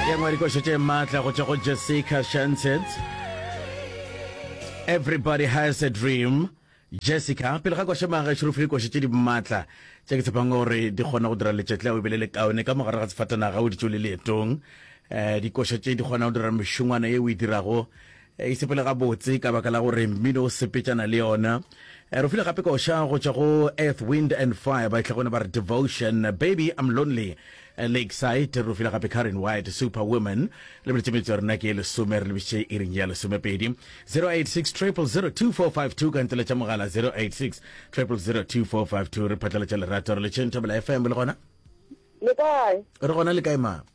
ye nngwe dikošo tše maatla go tšwa go jessica shanset everybody has a dream jessica pele ga koše maga šerufi dikoše tše di maatla tše ke tshepang gore di kgona go dira letšetle o ebele le kaone ka mogare ga sefatanaga o ditšo le leetong um dikoše tše di kgona go dira mešongwana ye o e dirago E sepele gabotse ka baka la gore mmino o sepetšana le yona. Re file gape koša go tšwa go Earth, Wind and Fire ba itlhagone ba re Devotion, Baby I'm Lonely, Lakeside. Re file gape Karen White, Superwoman. Lebeletše metso ya rena ke e lesome, re lebišitše iring ya lesomepedi. 086 000 2452 ka nteletša mogala 086 000 2452. Re phatlaletša lerato re le tšheng Thabela FM le gona. Le kae? Re gona le kae ma?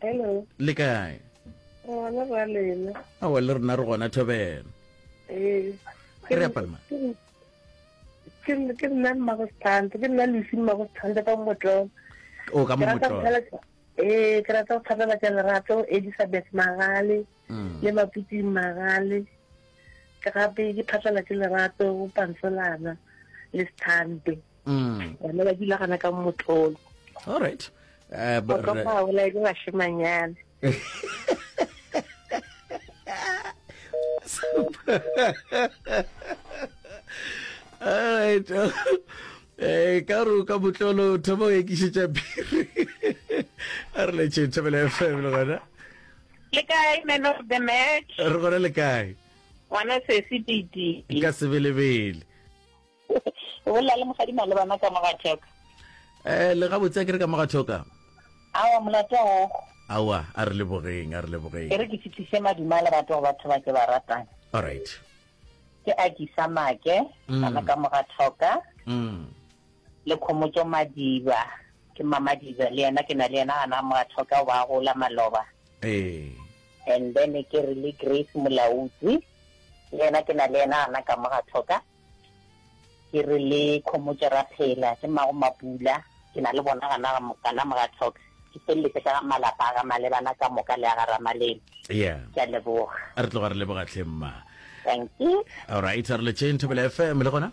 Hello. Le kae? Ngwana ba lena. Awa le rena re gona thobela. Eh. Ke re apalma. Ke nna ke nna mmago sthanda, ke nna lesi mmago sthanda ka motlo. O ka motlo. Eh, ke rata go thapela tsa lerato Elizabeth Magale. le Maputsing Magale, ke gape ke phatlela ke Lerato go Pansolana le Sthando. Bana ba dula gana ka Motlolo. All right. Eh, Go tlo ba ola ke bashemanyana. All right. Eh ka ro ka botlolo thoma o ekišetša phiri. A re le tšhe thobela FM le gona. Le kae man of the match? Re gona le kae? Ngwana sesi titi. Ka sebelebele. O bolela le mosadi male bana ka moga thoka. Eh le ga botse ke re ka moga thoka. Awa molato o. Awa a re le bogeng a re le bogeng. Ke re ke fitlise maduma le batho ba batho ba ke ba ratang. All right. Ke a ke sa make mm. bana ka moga thoka. Mm. Le khomotso madiba. Ke Mamadiza le yena ke na le yena gana mo a thoka go ba a gola Maloba. Ee. And then ke re le Grace Molaudzi le yena ke na le yena gana ka mo ga thoka. Ke re le Khomotše Raphela ke mmago Mapula ke na le bona gana kana mo ga thoka. Ke feleletse ka ga malapa a ga Malebana ka moka le a ga Ramalema. Yeah. Ke a leboga. A re tloga re leboga tlhe mma. Thank you. Alright, a re le tšeng Thobela FM le gona.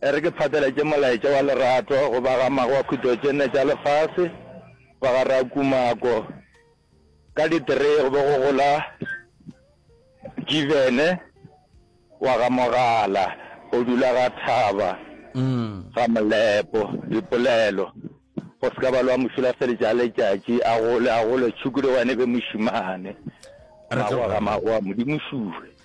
E re ke phateletše molaetša wa lerato go ba ga mago wa khutšo tše nne tša lefase, ba ga Rakumako, ka di three go be go gola Jivene wa ga Mogala o dula ga Thaba ga Molepo, dipolelo go se ka ba lwa mošulafeletša a letšatši a gole a gole tšhukudu wa ne be mošimane mago ga mago wa modimo šuwe.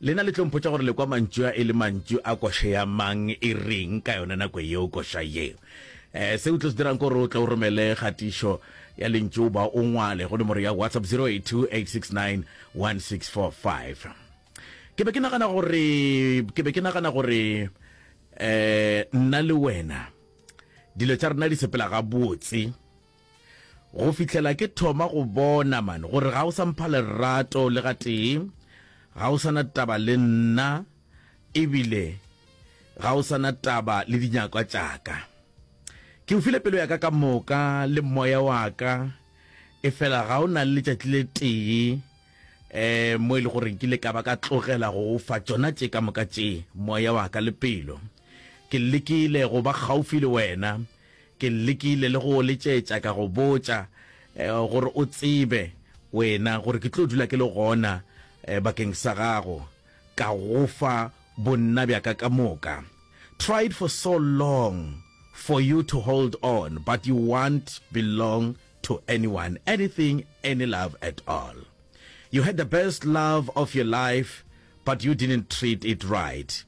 Lena le tlo mpotša gore le kwa mantšu a e le mantšu a koše ya mang e reng ka yona nako yeo koša yeo. Eh, se o tlo se dirang kore o tle o romele kgatišo ya lentšu ba o ngwale go nomoro ya WhatsApp 0828691645. Ke be ke nagana gore ke be ke nagana gore eh nna le wena dilo tša rena di sepela gabotse Go fihlela ke thoma go bona man gore ga o sa mpha lerato le ga tee, ga o sana taba le nna ebile ga o sana taba le dinyakwa tšaka. Ke o file pelo yaka ka moka le moya waka efela ga o na le letšatši le tee eh mo e le gore ke le ka ba ka tlogela go o fa tšona tše ka moka tše moya waka le pelo. Ke lekile go ba gaufi le wena Ke lekile le go letšetša ka go botša gore o tsebe wena gore ke tlo dula ke le gona bakeng sa gago, ka go fa bonna bja ka ka moka. Tried for so long for you to hold on but you want belong to anyone, anything, any love at all. You had the best love of your life but you didn't treat it right.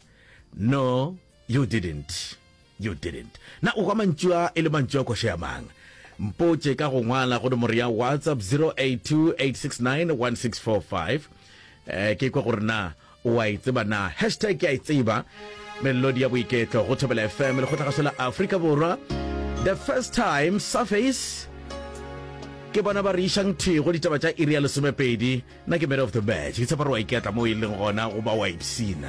No. You didn't, you didn't. Na o hwa mantšu a e le mantšu a koša ya mang? Mpotše ka go ngwala go nomoro ya WhatsApp 0828691645. Ke kwa gore na o a e tseba na. Hashtag ke a e tseba. Melodi ya boiketlo go Thobela FM le go tlhagaso la Afrika Borwa. The first time Surface ke bona ba re išang thego ditaba tša iri ya lesomepedi na ke man of the match ke tshepa gore wa iketla mo e leng gona goba wa ipsina